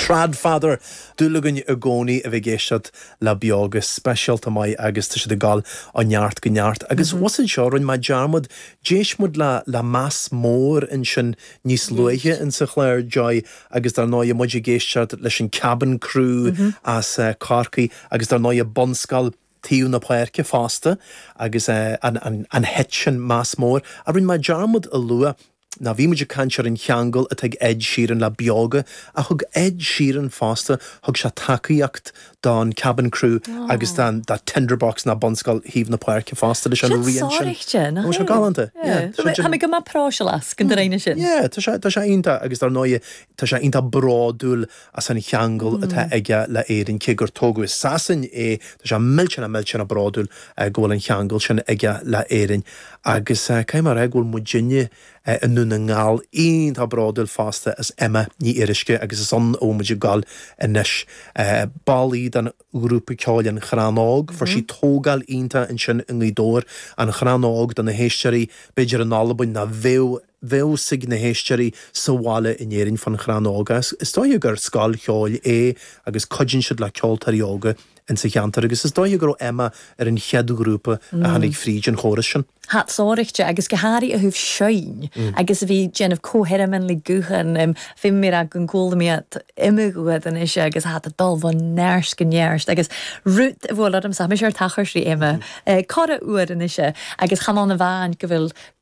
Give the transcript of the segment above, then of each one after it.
Trad Father, dúil againn i gcónaí a bheith ag éisteacht le Beoga, speisialta maith agus tá siad ag dul ó neart go neart. Agus was anseo, rinne mé dearmad, d'éist muid le le meas mór ansin níos luaithe in sa chlár, Joy, agus dár ndóigh muid ag éisteacht leis an Kabin Crew as Corcaigh agus dár ndóigh an Bunscoil Taobh na Páirce fosta agus an an an hit sin Meas Mór, a rinne mé dearmad a lua. Now bhí muid ag caint ar an cheangal atá ag Ed Sheeran le Beoga, ach thug Ed Sheeran fosta, thug sé tacaíocht don Kabin Crew agus don Tinderbox ná Bunscoil Thaobh na Páirce fosta leis an rian sin. Seo sònraichte, nach é? An bhfuil seo galánta? Yeah. Tha mi gu math pròiseil às, go ndéana sin. Yeah, tá sé iontach agus dar ndóigh tá sé iontach bródúil as an cheangal atá aige le hÉirinn, cé gur tógadh i Sasain é, tá sé millteanach millteanach bródúil go bhfuil an cheangal sin aige le hÉirinn. Agus caithfidh mé a rá go bhfuil muidinne i nDún na nGall iontach bródúil fosta as Emma Ní Fhíoruisce agus is ann a bhfuil muid ag goil anois. Ball í den ghrúpa ceoil An Crann Óg, fuair sí tógáil iontach ansin i nGaoth Dobhair, An Crann Óg, do na héisteoirí, b'fhéidir in Albain ná bheadh, Bheadh a fhios ag na héisteoirí sa bhaile in Éirinn fán Chrann Óg. Is dóiche gur scoil cheoil é agus cuidíonn siad le ceoltóirí óga insa cheantar agus is dóiche go raibh Emma ar an chéad ghrúpa a tháinig fríd an chóras sin. Tha iad sònraichte agus gu h-àraidh a thaobh seinn agus a bhith dèanamh co-sheirmean le guthan, feumaidh mi ràdh gun cuala mi iad iomadh uair a-nis agus tha iad a' dol o neart gu neart agus rud a bhuail ormsa, tha mise air tachairt ri Emma corra uair a-nis agus chan ann a-mhàin gu bheil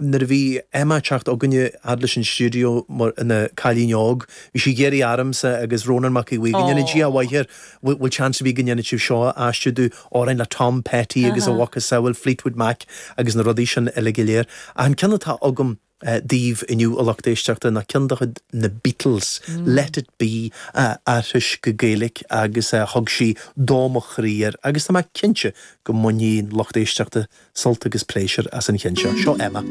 Nuair a bhí Emma ag teacht chugainne fhad leis an stiúideo mar ina cailín óg, bhí sí ag iarraidh ormsa agus Rónán Mac Aodha Bhuí go ndéana Dia a mhaith air, bhfuil seans ar bith go ndéanfadh sibh seo a aistriú domh, amhráin le Tom Petty agus a mhacasamhail Fleetwood Mac agus na rudaí sin uile go léir. Ach an ceann atá agam daoibh inniu, a lucht éisteachta, ná ceann de chuid na Beatles, Let It Be, a d'aistrigh sí go Gaeilic agus thug sí dó mo chroí air agus tá mé cinnte go mbainfidh lucht éisteachta sult agus pléisiúr as an cheann seo. Seo Emma.